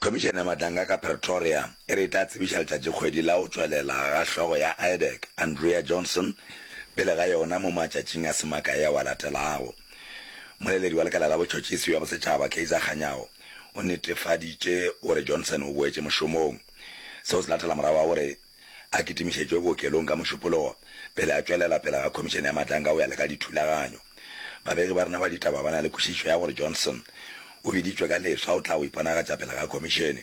Khomišene ya Matanga ka Pretoria e re e tla tsebiša letšatšikgwedi la go tšwelela ga hlogo ya IDEC, Andrea Johnson, pele ga yona mo matšatšing a se makae ao a latelago. Mmoleledi wa Lekala la Botšhotšhisi bja Bosetšhaba, Kaizer Kganyago, o netefaditše gore Johnson o boetše mošomong. Seo se latela morago ga gore a kitimišetšwe bookelong ka mošupologo pele a tšwelela pele ga Khomišene ya Matlanka go ya le ka Dithulaganyo. Babegi ba rena ba ditaba ba na le kwešišo ya gore Johnson o biditšwe ka leswa go tla go iponagatša pele ga Khomišene.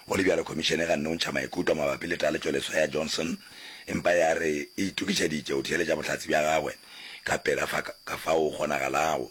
Go le bjalo, Khomišene e ganne go ntšha maikutlo mabapi le taletšoleswa ya Johnson empa ya re e itokišeditše go theeletša bohlatse bja gagwe ka pela ka fao go kgonagalago.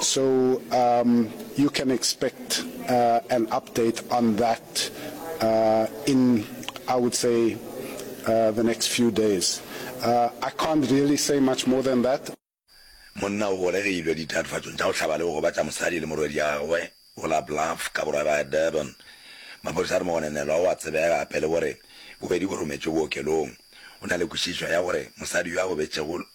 So um, you can expect uh, an update on that uh, in, I would say, uh, the next few days. Uh, I can't really say much more than that. monna o golegilwe ditatofatsong tša go hlaba le go gobatša mosadi le morwediagwe go la bluff ka borwa ba durban maphodisa a re mogonenelwa o a tsebega gape le gore bobedi bo rometšwe bookelong o na le kwešišo ya gore mosadi yo a gobetšego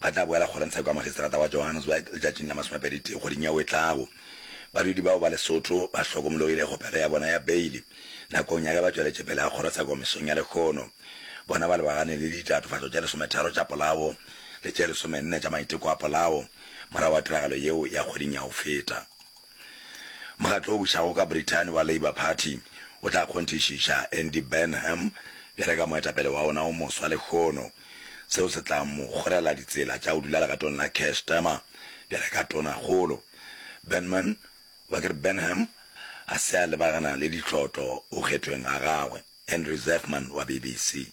Ba tla boela kgorotsheko ya magistrata wa Johannesburg letšatšing la masomepedi tee kgweding yeo e tlago. Badudi bao ba Lesotho ba hlokomologile kgopelo ya bona ya beili nakong ya ge ba tšweletše pele ga kgorotsheko mesong ya lekgono. Bona ba lebagane le ditatofatšo tše lesometharo tša polao le tše lesomenne tša maiteko a polao morago ga tiragalo yeo ya kgweding ya go feta. Mokgatlo o bušago ka Brithani wa Labour Party o tla kgonthišiša Andy Burnham bjale ka moetapele wa ona o moswa lehono, seo se tla mo kgorela ditsela tša go dula legatong la Keir Starmer bjale ka tonakgolo. Burnman, goba ke re Burnham, ga se a lebagana le ditlotlo go kgethweng ga gagwe. Henry Zeffman wa BBC.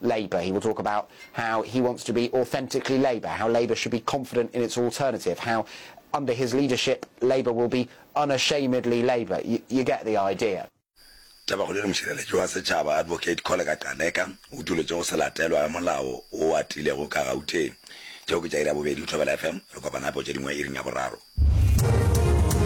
Labour. He will talk about how he wants to be authentically Labour, how Labour should be confident in its alternative, how under his leadership Labour will be unashamedly Labour. Y you get the idea. Tabakgolo le mošireletši wa setšhaba Advocate Kholeka Gcaleka o utoletše go se latelwa ga molao wo o atilego ka Gauteng. Tšeo ke tša iri ya bobedi go Thobela FM. Re kopana gape go tše dingwe iring ya boraro.